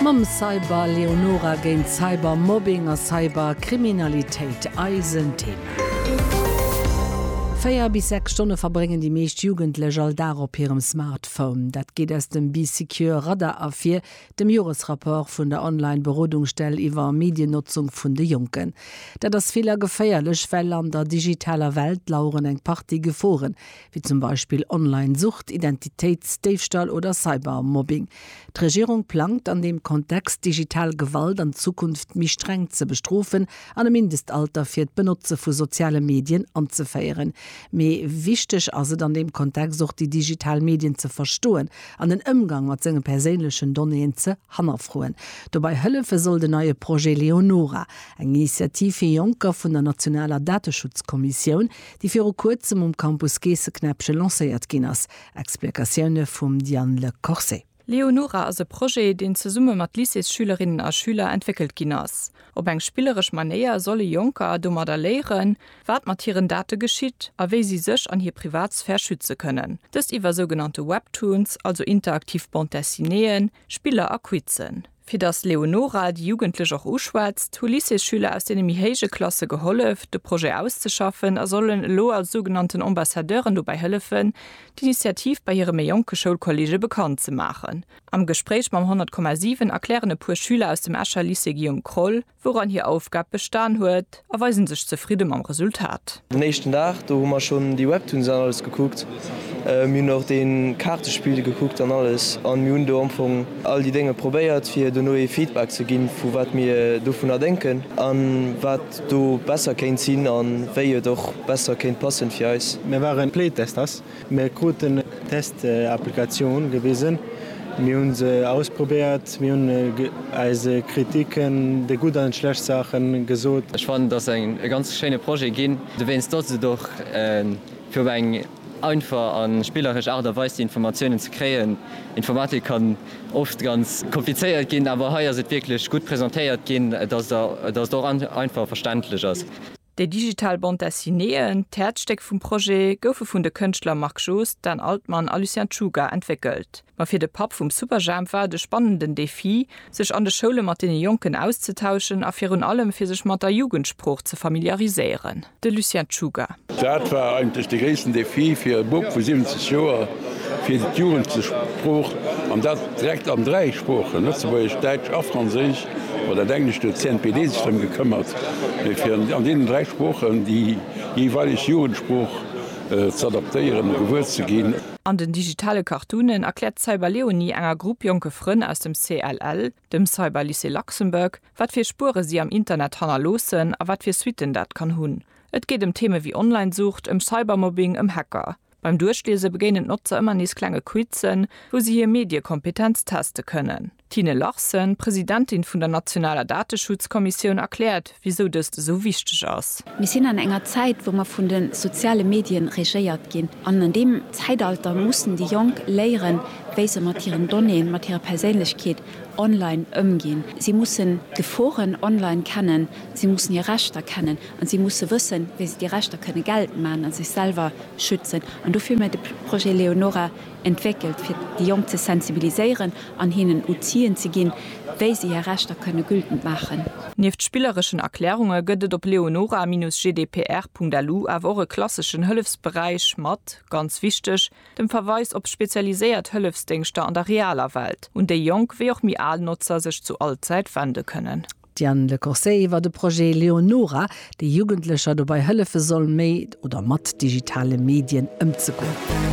Mam Cyber Leonora géint Cyber Mobbing a Cyber Kriminalitéit eisen Thema. Véier bis sechs Stonne verbréngen déi meescht Jugendlech all Dag op hirem Smartphone. Dat geet aus dem Bee Secure Radar ervir, dem Joresrapport vun der Online Berodungsstell iwwer Mediennotzung vun de Jonken. Dat ass vill a geféierlech, well an der digitaler Welt laueren eng Partie Geforen, wéi zum Beispill Online-Sucht, Identitéitsdéifstall oder Cybermobbing. D'Regierung plangt an deem Kontext, digital Gewalt an Zukunft méi streng ze bestrofen an e Mindestalter fir d'Benotze vu soziale Medien anzeféieren. Mee wichteg ass et an deem Kontext och, déi digital Medien ze verstoen an den Ëmgang mat senge perséinlechen Donnéeën ze hannerfroen. Dobei hëllefe soll den neie Projet Leonora, eng Initiativ fir Jonker vun der nationaler Dateschutzkommissioun, déi viru kuerzem um Campus Geesseknäppche lancéiert ginn ass. Explikatioune vum Diane Le Corset. Leonora ass e Projet, deen zesumme mat Lycéesschülerinnen a schüler entwéckelt ginn ass. Op eng spilleresch Manéier solle Jonker domadder léieren, wat mat hiren Date geschitt a wéi si sech an hir Privatsphär schütze kënnen. Dëst iwwer sougenannte Webtoons, also interaktiv Bande-dessinéeën, Spiller a Quizzen. Fir datt d'Leonora déi Jugendlech och uschwätzt, hu Lycéesschüler aus deene méi héije Klasse gehollef, de Projet auszeschaffen a sollen elo als sougenannten Ambassadeuren dobäi hëllefen, d'Initiativ bei hire méi jonke Schoulkolleege bekannt ze maachen. Am Gespréich mam 100,7 erklären e puer Schüler aus dem Escher Lycée Guillaume Kroll, wouran hir Aufgab bestan huet, a weisen sech zefridde mam Resultat. Den éischten Dag, do hu mer schonn déi Webtoons an alles gekuckt. Mir hunn och dee Kaartespill gekuckt an alles a mir hunn do am Fong all déi Dénge probéiert, fir dono ee Feedback ze ginn, vu wat mir dovunner denken a wat do besser kéint sinn a wéi et och besser kéint passen fir eis. Mir waren Playtesters Mir kruten eng Test-Applikatioun gewisen, mir hu se ausprobéiert, mir hunn eis Kritiken, déi gutt an déi schlecht Saachen gesot. Ech fannen, et ass e ganz schéine Projet ginn, dowéinst dass et och fir op eng einfach a spilleresch Aart a Weis déi Informatiounen ze kréien. Informatik kann oft ganz komplizéiert ginn, awer hei ass et wierklech gutt presentéiert ginn, dass et och einfach a verständlech ass. Déi digital Bande Dessinéeën, d'Häerzstéck vum Projet, goufe vun de Kënschtler Marc Joost, Dan Altmann a Lucien Czuga entwéckelt. Ma fir de Papp vum Superjhemp war et e spannenden Defi, sech an de Schoule mat deene Jonken auszetauschen a virun allem fir sech mat der Jugendsprooch ze familiariséieren. De Lucien Czuga. Dat war eigentlech de gréissten Defi fir e Bub vu 70 Joer, fir d'Jugendsprooch, an dat direkt an dräi Sproochen, Lëtzebuergesch, Däitsch a Franséisch, Oder dat Englescht huet d'CNPD sech drëm gekëmmert, fir an deenen dräi Sproochen déi jeeweileg Jugendsprooch z'adaptéieren a gewuer ze ginn. An den digitale Cartoonen erkläert d'Cyberleonie enger Grupp jonke Frënn aus dem CLL, dem Cyberlycée Luxembourg, wat fir Spuere si am Internet hannerloossen a wat fir Suitten dat kann hunn. Et geet ëm Theeme wéi Online-Sucht, ëm Cybermobbing, ëm Hacker. Beim Duerchliese begéinen d'Notzer ëmmer nees klenge Quizzen, wou se hir Mediekompetenz teste kënnen. D'Tine Larsen, Presidentin vun der nationaler Dateschutzkommissioun, erkläert, wisou dëst esou wichteg ass. Mir sinn an enger Zäit, wou mer vun de soziale Medien regéiert ginn. An an deem Zäitalter mussen déi Jonk léieren, wéi se mat hiren Donnéeën, mat hirer Perséinlechkeet online ëmginn. Si mussen d'Geforen online kennen, si mussen hir Rechter kennen. An si musse wëssen, wéi se déi Rechter kënne geltend maachen a sech selwer schützen. An dofir hu mir de Projet Leonora entwéckelt, fir déi Jonk ze sensibiliséieren an hinnen Outien ze ginn, wéi se hir Rechter kënne gültend maachen. Nieft spillereschen Erklärunge gëtt et op leonora-gdpr.lu awer och e klasseschen Hëllefsberäich mat, ganz wichteg, dem Verweis op spezialiséiert Hëllefsdéngschter an der realer Welt, un déi jonk wéi och méi al Notzer sech zu all Zäit wende kënnen. D'Diane Le Corset iwwer de Projet Leonora, dee Jugendlecher dobei hëllefe soll, méi oder mat digitale Medien ëmzegoen.